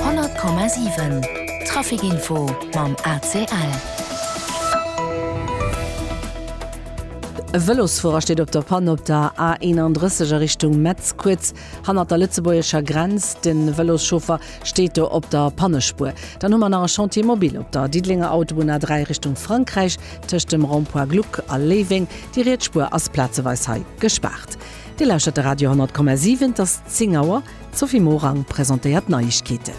Honnert Komma siwen, Trafikinfo mam ACL. E Vëlosfuerer steet op der Panne op der A 31 a Richtung Metz, kuerz hannert der lëtzebuergescher Grenz. De Vëloschauffer steet do op der Pannespuer. Dann hu mer nach e Chantier mobile op der Diddelenger Autobunn A 3 Richtung Frankräich, tëscht dem Rond-point Gluck a Léiweng. Déi riets Spuer ass plazeweis hei gespaart. Dir lauschtert de Radio 10,7, et ass 10 Auer. D'Sophie Morang presentéiert d'Neiegkeeten.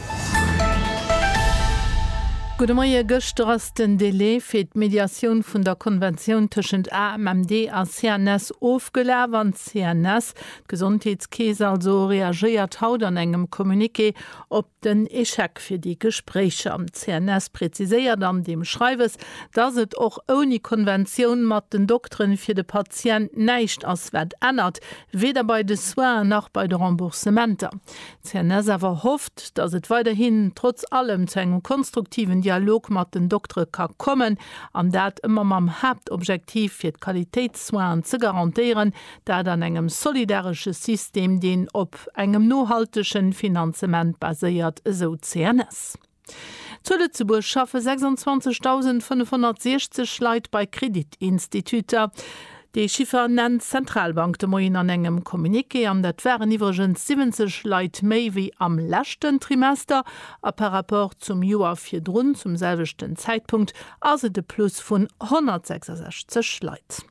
Gudde Moie, Gëschter ass den Delai fir d'Mediatioun vun der Konventioun tëschent AMMD a CNS ofgelaf an d'CNS, d'Gesondheetskeess also, reagéiert haut an engem Communiqué op den Échec fir déi Gespréicher. D'CNS präziséiert an deem Schreiwes, datt et och ouni Konventioun mat den Dokteren fir de Patient näischt ass, wat ännert, weder bei de Soinen nach bei de Remboursementer. D'CNS awer hofft, datt et weiderhin trotz allem zu engem konstruktiven Dialog mat den Doktere ka kommen, an dat ëmmer mam Haaptobjektiv, fir d'Qualitéitssoinen ze garantéieren, Dat an engem solidaresche System, deen op engem nohaltegen Finanzement baséiert, esou d'CNS. Zu Lëtzebuerg schaffe 26.560 Leit bei Kreditinstituter. Dee Chiffer nennt d'Zentralbank de Moien an engem Communiqué an dat waren iwwregens 70 Leit méi wéi am leschten Trimester. A par rapport zum Joer virdrun zum selwechten Zäitpunkt ass et e Plus vun 166 Leit.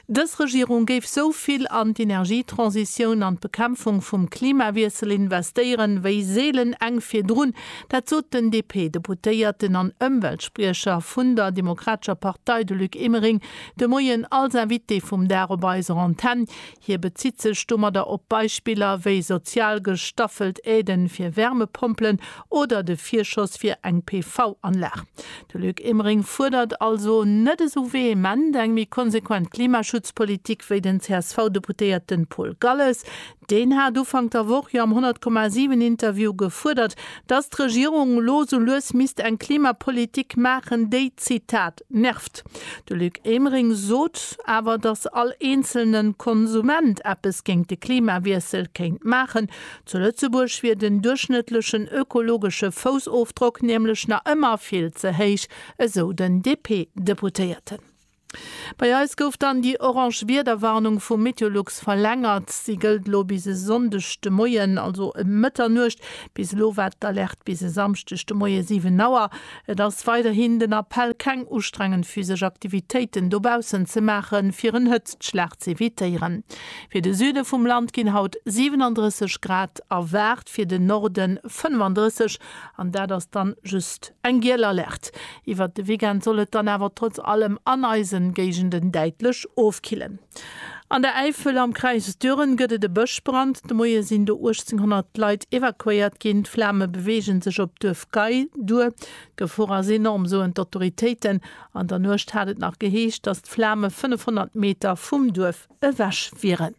Dës Regierung géif sou vill an d'Energietransitioun an d'Bekämpfung vum Klimawiessel investéieren, wéi seelen eng virdrun. Dat sot den DP-Deputéierten an Ëmweltspriecher vun der Demokratescher Partei, de Luc Emering, de Moien als Invité vum Dag op eiser Antenn. Hie bezitt sech domadder op Beispiller wéi sozial gestaffelt Aiden fir Wärmepompelen oder de Virschoss fir eng PV-Anlag. De Luc Emering fuerdert also net esou vehement eng méi konsequent Klimaschutzpolitik wéi den CSV-Deputéierten Paul Galles. Deen hat Ufank der Woch jo am 100,7 Interview gefuerdert, datt d'Regierung elo esou lues misst eng Klimapolitik maachen, déi, Zitat, Nervt. De Luc Emering sot awer, datt all eenzelne Konsument eppes géint de Klimawiessel kéint maachen. Zu Lëtzebuerg wier den duerchschnëttlechen ökologesche Foussofdrock nämlech nach ëmmer vill ze héich, esou den DP-Deputéierten. Bei eis gouf dann déi orange Wiederwarnung vu Meteolux verlängert. Si gëllt elo bis e Sonndeg de Moien, also ëm Mëtternuecht. Bis elo war d'Alerte bis e Samschdeg de Moie 7 Auer. Et ass weiderhin den Appell keng ustrengend physesch Aktivitéiten dobaussen ze maache fir en Hëtztschlag z'evitéieren. Fir de Süde vum Land ginn haut 37 Grad erwaart, fir den Norde 35, an dat ass dann just eng giel Alerte. Iwwert de Weekend soll et dann awer trotz allem an eisen Géigenden däitlech ofkillen. An der Äifel am Kräis Düren gëtt et e Bëschbrand. De Moie sinn do 1.800 Leit evakuéiert ginn. D'Flame beweege sech op d'Duerf Gay duer. D'Gefor ass enorm, soen d'Autoritéiten. An der Nuecht hat et nach geheescht, datt d'Flame 500 Meter vum Duerf ewech wieren.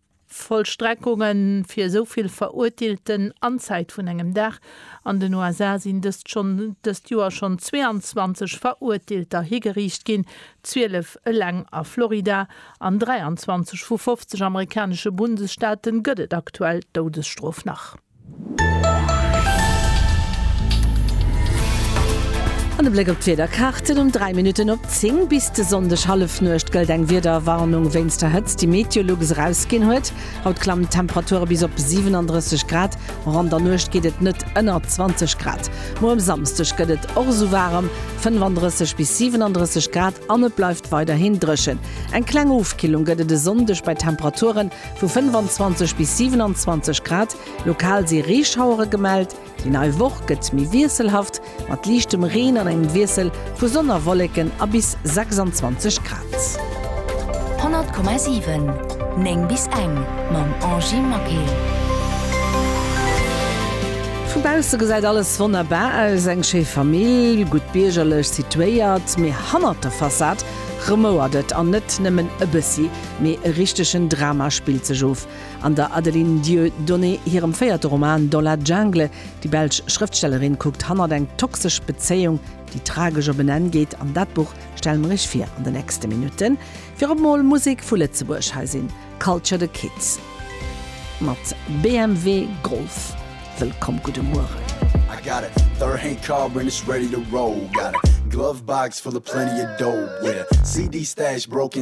Vollstreckungen fir esou vill Verurteelten an Zäit vun engem Dag, An den USA sinn dëst schonn dëst Joer schonn 22 Verurteelter higeriicht ginn, 12 eleng a Florida. An 23 vu 50 amerikanesche Bundesstaate gëtt et aktuell d'Doudesstrof nach. An e Bléck op d'Wiederkaarten, Um 3 Minutten op 10 bis de Sonndeg Hallefnuecht gëllt eng Wiederwarnung wéinst der Hëtzt, déi Meteolux erausginn huet. Haut klammen d'Temperature bis op 37 Grad, och an der Nuecht geet et net ënner 20 Grad. Muer um Samsdeg gëtt et och esou waarem, 35 bis 37 Grad, an et bleift weiderhin dréchen. Eng kleng Ofkillung gëtt et e Sonndeg bei Temperaturen Vu 25 bis 27 Grad, lokal si Reeschauere gemellt. Déi nei Woch gëtt méi wiesselhaft, mat liichtem Reen an engem Wiessel vu Sonn a Wolleken a bis 26 Grad. 100,7 9 bis eng mam Angy Maquil. Vu bausse gesäit alles wonnerbar aus, eng schéi Famill, gutt biergerlech situéiert, mee hannert der Fassad remouert et, an net nëmmen e bëssi. Mee e richtegen Drama spillt sech of. An der Adeline Dieudonné hirem véierte Roman Dans la jungle, déi belsch Schrëftstellerin kuckt hannert eng toxesch Bezéiung, déi tragesch op en Enn geet. An dat Buch stelle mer iech vir an de nächste Minutten. Virop mol Musek vu Lëtzebuerg, hei sinn Culture the Kids mat BMW Golf. Wëllkomm, gudde Mueren. I got a third hand car and it's ready to roll Got a glove box full of plenty of dough Yeah, CD stash broke in.